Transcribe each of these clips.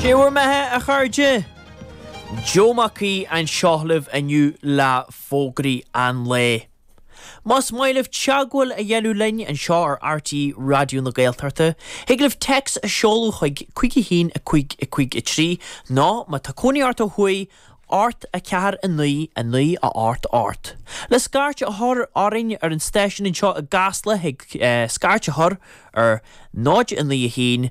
'Sé bhur mbeatha, a chairde? Joe Mac Aoidh anseo libh inniu le fógraí an lae. Más maith libh teagmháil a dhéanamh linn anseo ar RTÉ Raidió na Gaeltachta, thig libh téacs a sheoladh chuig 51553 nó, má tá cónaí ort ó thuaidh, 849988. Le scairt a chur orainn ar an stáisiún anseo i gCasla thig scairt a chur ar 0 9 1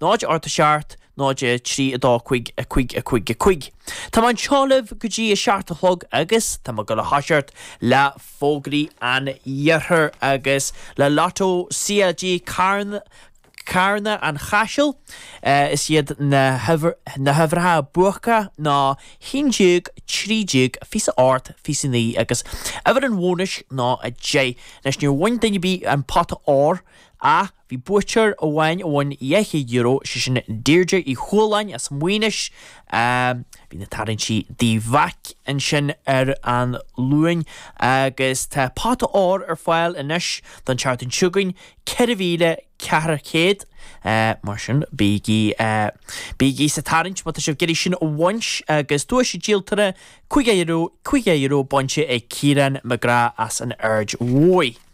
0 8 7 0 3 2 5 5 5 5 Tá mé anseo libh go dtí a seacht a chlog agus tá mé ag gabháil a thoiseacht le fógraí an iarthair agus le lotto CLG Carn Carna an Chaisil is iad na huimhir na huimhreacha buaca ná 11 13 28 29 agus uimhir an bhónais ná 10 leis níor bhain duine ar bith an pota óir a Bhí buaiteoir amháin a bhain €200, sé sin Deirdre Uí Chualáin as Muighinis. Bhí na tarraingtí i dTigh Mheaic ansin ar an Luain agus tá pota óir ar fáil anois don tseachtain seo chugainn, €4,400. Mar sin, bígí bígí sa tarraingt má tá sibh ag iarraidh sin a bhaint agus duais an díoltóra €50, €50 bainte ag Ciarán McGrath as an Aird Mhóir.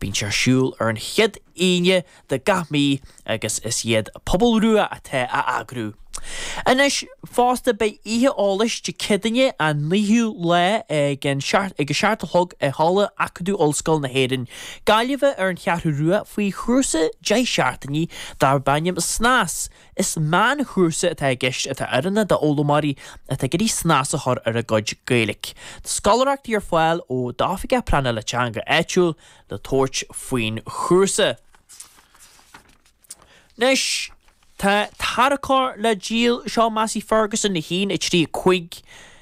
Bíonn sé ar siúl ar an chéad Aoine de gach mí agus is iad Pobal Rua atá á eagrú. Anois fosta beidh oíche eolais Dé Céadaoin an 9ú lá ag an ag a seacht a chlog i Halla Acadamh Ollscoil na hÉireann, Gaillimhe ar an Cheathrú Rua faoi chúrsa deich seachtainí darb ainm Snas. Is meánchúrsa atá i gceist atá oiriúnach d'fhoghlaimeoirí atá ag iarraidh snas a chur ar a gcuid Gaeilge. Tá scoláireachtaí ar fáil ó d'Oifigeach Pleanála Teanga áitiúil le tabhairt faoin chúrsa. Anois tá tarracóir le díol, seo Massey Ferguson 1, 3, 5.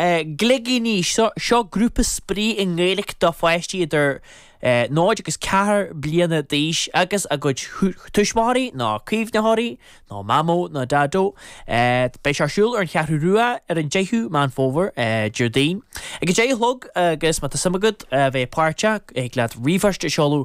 Gligíní, Seo grúpa spraoi i nGaeilge do pháistí idir 0 agus 4 bliana d'aois agus a gcuid tuismitheoirí nó caomhnaitheoirí nó mamó nó daideó. Beidh sé ar siúl ar an Cheathrú Rua ar an 10ú Meán Fómhair, Déardaoin, ag a deich a chlog agus má tá suim agat bheith páirteach thig leat ríomhphoist a sheoladh